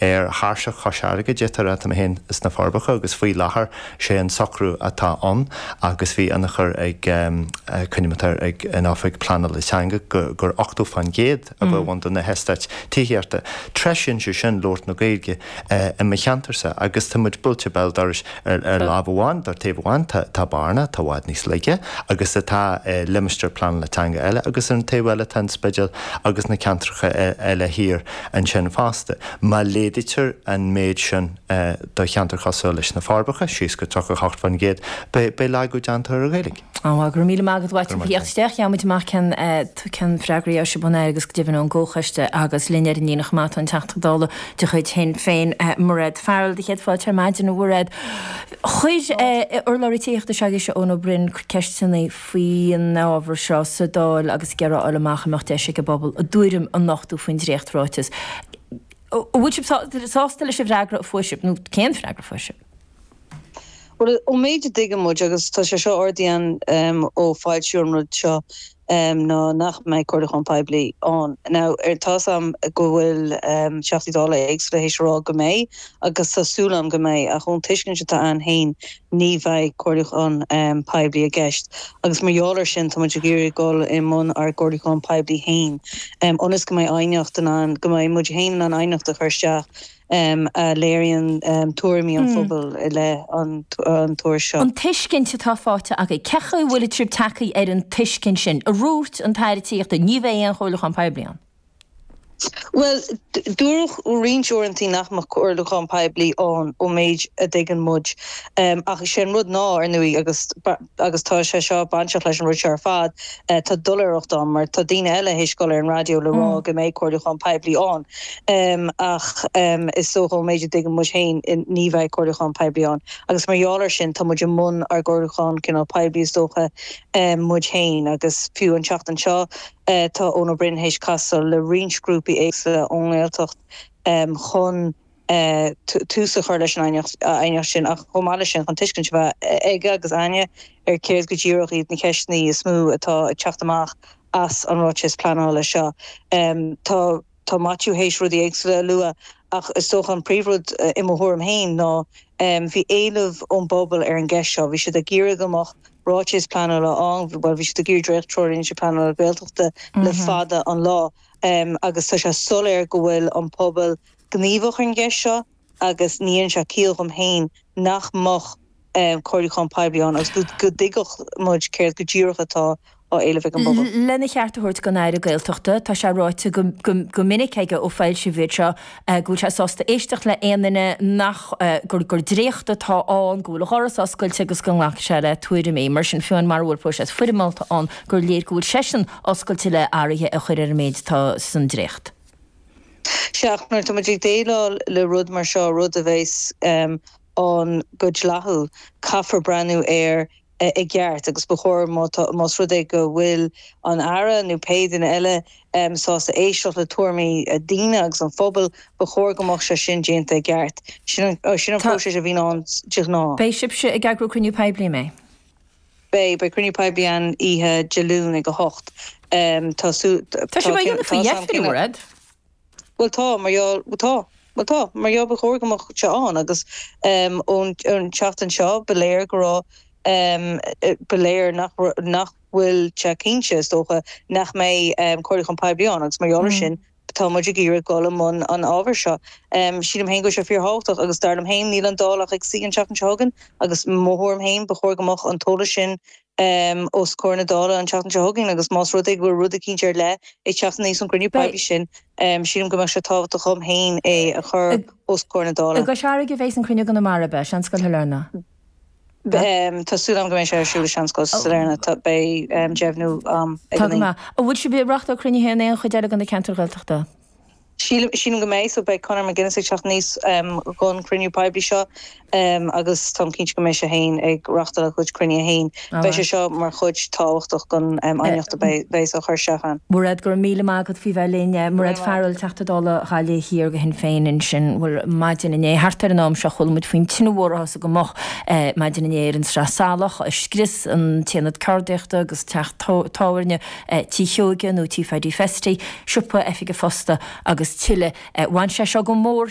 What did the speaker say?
ar thairseach Chois Fharraige, d'fhéadfá a rá, tá mé féin sna Forbacha agus faoi láthair sé an socrú atá ann agus bhí ionchur ag an gcuideachta, ag an Oifig Pleanála Teanga gur 80% a bheadh ann de na heastáit tithíochta. Treisíonn sé sin labhairt na Gaeilge i mo cheantarsa agus tá muid buailte béal dorais ar láimh amháin, ar taobh amháin tá Bearna atá i bhfad níos laige agus atá i limistéar pleanála teanga eile agus ar an taobh eile tá an Spidéal agus na ceantracha eile thiar. ansin fosta. Má laghdaítear an méid sin do cheantar cosúil leis na Forbacha, síos go 38%, beidh laghdú déanta ar an Ghaeilge. Go raibh míle maith agat, a Mhaitiú, as a thíocht isteach. Gheobhaidh muid amach cén freagraí a thiocfas ón Aire agus go deimhin ón gComhchoiste agus linn ar an líne chomh maith tá an Teachta Dála de chuid Shinn Féin, Mairéad Farrell, tá céad fáilte ar maidin, a Mhairéad. Chuir urlabhraí tithíochta s'agaibhse, Eoin Ó Broin, ceisteanna. faoin ábhar seo sa Dáil ag iarraidh a fháil amach an mbeadh deis ag an bpobal a dtuairim a nochtú faoin dréacht-ráiteas. An bhfuil sibh sásta leis an bhfreagra a fuair sibh nó cén freagra a fuair sibh? Bhuel, ón méid a dtuigeann muid, agus tá sé seo ardaithe againn ó foilsíodh an rud seo, ná nach mbeidh comhairliúchán poiblí ann. Now, tá 'fhios a'm go bhfuil Teachtaí Dála éagsúla théis a rá go mbeidh, agus tá súil a'm go mbeidh, ach ón tuiscint atá a'inn fhéin, ní bheidh comhairliúchán poiblí i gceist agus mar gheall air sin tá muid ag iarraidh dul i mbun ár gcomhairliúcháin poiblí féin ionas go mbeidh aighneacht in ann, go mbeidh muid féin in ann aighneacht a chur isteach a léiríonn tuairimí an phobail i leith an ruda seo. An tuiscint atá faighte agaibh. Cé acu a bhfuil an tAire ag tacú leis an tuiscint sin? Ar dhúirt an tAire Tithíochta, ní bheidh aon chomhairliúchán poiblí ann. Bhuel, dúradh roinnt uaireantaí nach mbeadh comhairliúchán poiblí ann ón méid a dtuigeann muid, ach is é an rud ná, ar ndóigh, agus agus tá sé seo bainteach leis an rud seo ar fad, tá doiléireacht ann, mar tá daoine eile théis dhul ar an raidió le rá go mbeidh comhairliúchán poiblí ann, ach is dócha ón méid a dtuigeann muid féin ní bheidh comhairliúchán poiblí ann, agus mar gheall air sin tá muid i mbun ár gcomhairliúchán cineál poiblí is dócha muid féin, agus fiú an tseachtain seo. Tá Eoin Ó Broin théis casadh le roinnt grúpaí éagsula ón nGaeltacht chun tús a chur leis an aighneacht sin ach chomh maith leis sin chun tuiscint a bheith aige agus againne ar céard go díreach iad na ceisteanna is mó atá ag teacht amach as an ráiteas pleanála seo. Tá. Tá Maitiú théis rudaí éagsúla a lua ach is dócha an príomhrud, i mo thuairim féin, ná bhí éileamh ón bpobal ar an gceist seo. Bhí siad ag iarraidh go mbeadh ráiteas pleanála ann, bhuel, bhí siad ag iarraidh dréacht-Treoirlínte Pleanála Gaeltachta le fada an lá agus tá sé soiléir go bhfuil an pobal gníomhach ar an gceist seo. agus ní dhéanann sé ciall dhom féin nach mbeadh comhairliúchán poiblí ann agus go dtuigfeadh muid céard go díreach atá á éileamh ag an bpobal. Lena cheart a thabhairt don Aire Gaeltachta, tá sé ráite go minic aige ó foilsíodh iad seo go bhfuil sé sásta éisteacht le haon duine, nach, gur dréacht atá ann, go bhfuil a dhoras oscailte agus go nglacfaidh sé le tuairimí. Mar sin féin, mura bhfuil próiseas foirmeálta ann, gur léir go bhfuil seisean oscailte le hathruithe a chur ar an méid atá san dréacht. agus nuair atá muid ag déileáil le rud mar seo, rud a bheas ann go dleathúil, caithfear breathnú air i gceart agus ba chóir más rud é go bhfuil an Aire nó pé duine eile sásta éisteacht le tuairimí daoine agus an phobail, ba chóir go mbeadh sé sin déanta i gceart. Sin an próiseas a bhíonn ann de ghnáth. Beidh sibhse ag eagrú cruinniú poiblí, a Mhairéad? Beidh, beidh cruinniú poiblí ann oíche Dé Luain ag a hocht. Tá súil, tá, Tá sibh á tá, dhéanamh faoi tá sam dheifir, a cinneadh. Mhuraed? Bhuel tá, mar gheall, bhuel tá, bhuel tá, mar gheall ba chóir go mbeadh sé ann agus ón, ón tseachtain seo ba léir go raibh, ba léir nach raibh, nach bhfuil sé cinnte, is dócha, nach mbeidh comhairliúchán poiblí ann agus mar gheall ar sin, Tá muid ag iarraidh dul i mbun an ábhair seo. Sílim féin go bhfuil sé fíorthábhachtach agus dar liom féin níl an Dáil ach ag suí an tseachtain seo chugainn agus i mo thuairim féin ba chóir go mbeadh an t-eolas sin os comhair na Dála an tseachtain seo chugainn agus más rud é go bhfuil rud eicínt ar leith ag teacht aníos ón gcruinniú poiblí sin sílim go mbeadh sé tábhachtach dhom féin é a chur os comhair na Dála. I gCois Fharraige a bheas an cruinniú i gConamara, beidh, Seanscoil Sailearna. Tá súil agam go mbeidh sé ar siúl i Seanscoil Sailearna. Beidh deimhniú agam Tá go maith. An bhfuil sibh ag reáchtáil cruinnithe in aon chuid eile de na ceantair Ghaeltachta? Sílim go mbeidh seo. Beidh Conor McGuinness ag teacht aníos dhon chruinniú poiblí seo agus táim cinnte go mbeidh sé féin ag reáchtáil a chuid cruinnithe féin. Beidh sé seo mar chuid tábhachtach den aighneacht a bheas á cur isteach ann. Mairéad, Go raibh míle maith agat faoi bheith linn. Mairéad Farrell, Teachta Dála Ghaillimh Thiar go Shinn Féin ansin. Bhuel, maidin inné, thart ar an am seo, chuala muid faoin tine mhór a thosaigh go moch maidin inné ar an Sraith Salach, a scrios an t-aonad ceardaíochta agus teach tábhairne Tí Sheoige, nó Tí Phaidí Festy, siopa, oifig an phosta agus tuilleadh. Bhain sé seo go mór.